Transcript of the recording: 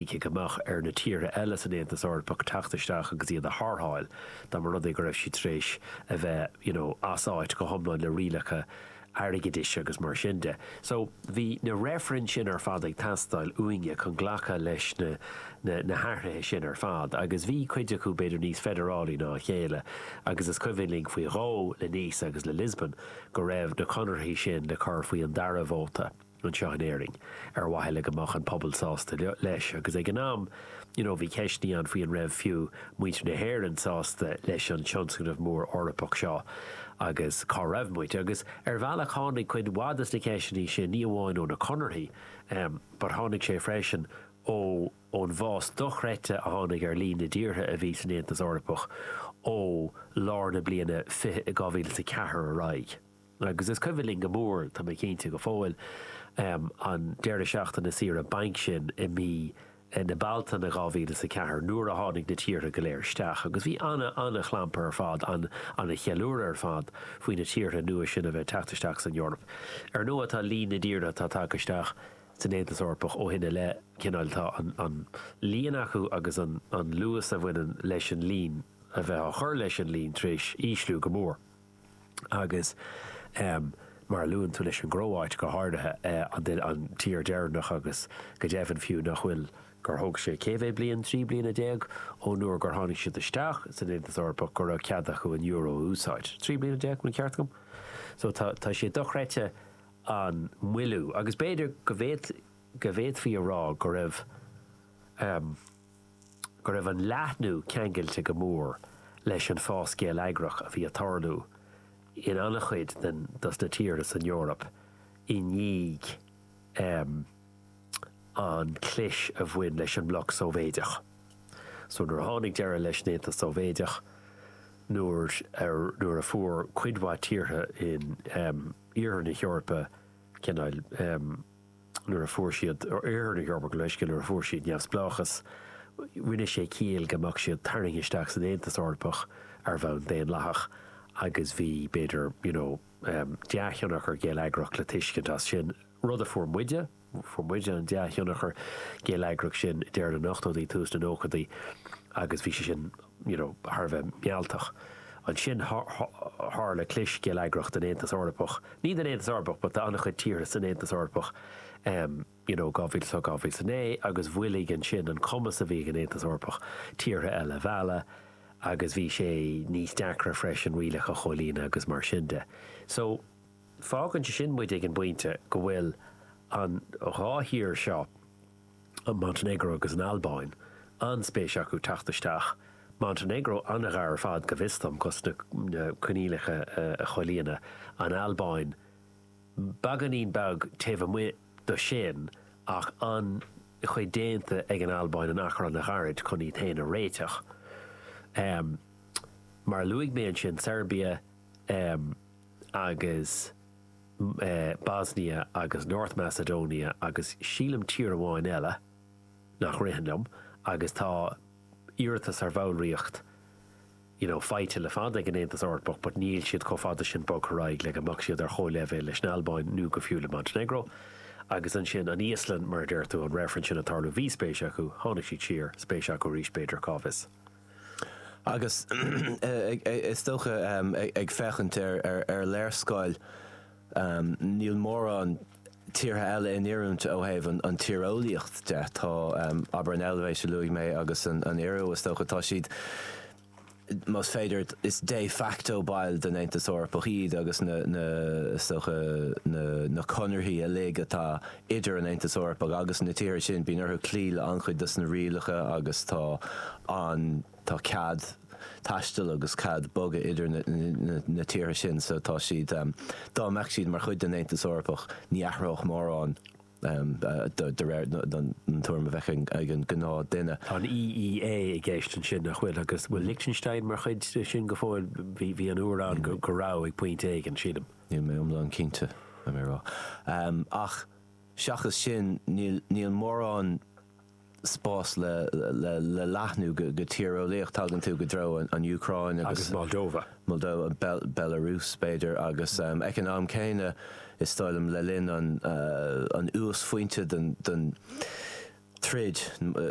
Cinnte go mbeadh ar na tíortha eile san Aontas Eorpach teacht isteach agus iad a tharrtháil dá mba rud é go raibh siad tar éis a bheith you know as áit go hiomlán le rialacha airgeadais agus mar sin de. So bhí na reifrinn sin ar fad ag teastáil uainne chun glacadh leis na na na hathruithe sin ar fad agus bhí cuid acu b'fhéidir níos feidearálaí ná a chéile agus is cuimhin linn faoi dhó le Nice agus le Lisbon go raibh na conarthaí sin le cur faoi an dara vóta. anseo in Éirinn ar mhaithe le go mbeadh an pobal sásta leis agus ag an am you know bhí ceisteannaí ann faoi an raibh fiú muintir na hÉireann sásta leis an tionscnamh mór Eorpach seo agus cá raibh muid agus ar bhealach tháinig cuid mhaith de na ceisteannaí sin ní amháin ó na conarthaí but tháinig sé freisin ó ón bhfás dochreidte a tháinig ar líon na dtíortha a bhí san Aontas Eorpach ó lár na bliana 20, 2004 ar aghaidh. Agus is cuimhin linn go mór, tá mé cinnte, go fóill, an deireadh seachtaine saoire bainc sin i mí na Bealtaine 2000 is a ceathair nuair a tháinig na tíortha go léir isteach agus bhí ana, ana chlampar ar fad, an, ana cheiliúradh ar fad faoi na tíortha nua sin a bheith teacht isteach san Eoraip. Ar ndóigh tá líon na dtíortha atá tagtha isteach san Aontas Eorpach ó shin i leith, cineál, tá an, an líon acu agus an, an luas a bhaineann leis an líon a bheith á chur leis an líon tar éis ísliú go mór. agus mar a luann tú leis an gCróáit go háirithe, an tír deireanach agus go deimhin fiú nach bhfuil, gur thóg sé cé mhéad bliain, trí bliana déag ón uair gur tháinig siad isteach san Aontas Eorpach go raibh cead acu an euro a úsáid. Trí bliana déag, an ceart agam? So tá sé dochreidte an moilliú agus b'fhéidir go bhféadfaí a rá go raibh. go raibh an leathnú ceangailte go mór leis an fás geilleagrach a bhí ag tarlú in an-chuid den dos na tíortha san Eoraip i ndiaidh an clis a bhain leis an mbloc Sóivéideach. So nuair a tháinig deireadh leis an Aontas Sóivéideach, nuair a, nuair a fuair cuid mhaith tíortha in Iarthar na hEorpa cineál. nuair a fuair siad Oirthear na hEorpa, gabh mo leithscéal, nuair a fuair siad neamhspleáchas, rinne sé ciall go mbeadh siad tarraingthe isteach san Aontas Eorpach ar bhonn daonlathach agus bhí, b'fhéidir, you know, dea-thionchar geilleagrach le tuiscint as sin, rud a fuair muide, fuair muide an dea-thionchar geilleagrach sin i deireadh na n-ochtóidí, tús na nóchaidí agus bhí sé sin. you know thar a bheith mealltach. Ansin tharla clis geilleagrach den Aontas Eorpach, ní den Aontas Eorpach but de an-chuid tíortha san Aontas Eorpach em you know 2008, 2009 agus mhoilligh ansin an cumas a bhí ag an Aontas Eorpach tíortha eile a mhealladh agus bhí sé níos deacra freisin rialacha a chomhlíonadh agus mar sin de. So fágann sé sin muid ag an bpointe go bhfuil an dhá thír seo, an Montainéagró agus an Albáin an-spéis acu teacht isteach, Montainéagró an-ghar ar fad, go bhfios dom, dos na coinníollacha a chomhlíonadh, an Albáin beagáinín beag taobh amuigh do sin ach an-chuid déanta ag an Albáin in achar an-ghairid chun iad féin a réiteach. Mar a luaigh mé ansin, Seirbia agus. Bosnia agus North Macedonia agus sílim tír amháin eile nach ritheann liom agus tá iarratas ar bhallraíocht you know faighte le fada ag an Aontas Eorpach but níl siad chomh fada sin bogtha ar aghaidh le go mbeadh siad ar chomhleibhéal leis an Albáin nó go fiú le Montenegro agus ansin an Íoslainn mar a deir tú an reifreann sin ag tarlú bhí spéis acu tháinig siad siar spéis acu arís b'fhéidir cá bhfios. Agus is dócha ag féachaint ar léarscáil níl mórán tíortha eile in oiriúint ó thaobh an tíreolaíocht de. Tá abair an Eilvéis a luaigh mé agus an Iorua is dócha, tá siad más féidir is de facto baill den Aontas Eorpach iad agus na is dócha na conarthaí uilig atá Idir an Aontas Eorpach agus na tíortha sin, bíonn orthu cloí le an-chuid dos na rialacha agus tá an, tá cead taistil agus cead bogadh idir na tíortha sin so tá siad, dá mbeadh siad mar chuid den Aontas Eorpach, ní athródh mórán de réir an tuairim a bheadh ag an gnáth duine. Tá an EEA i gceist ansin, nach bhfuil? Agus bhfuil Lichtenstein mar chuid de sin go fóill? Bhí uair ann go raibh, ag pointe éigin, sílim. Níl mé iomlán cinnte, le rá. Ach seachas sin, níl mórán spás le leathnú go tíreolaíocht. Tagann tú go dtreo an Úcráin agus Moldova, Belarus b'fhéidir, agus ag an am céanna, is dóigh liom, le linn an uasphointe den troid,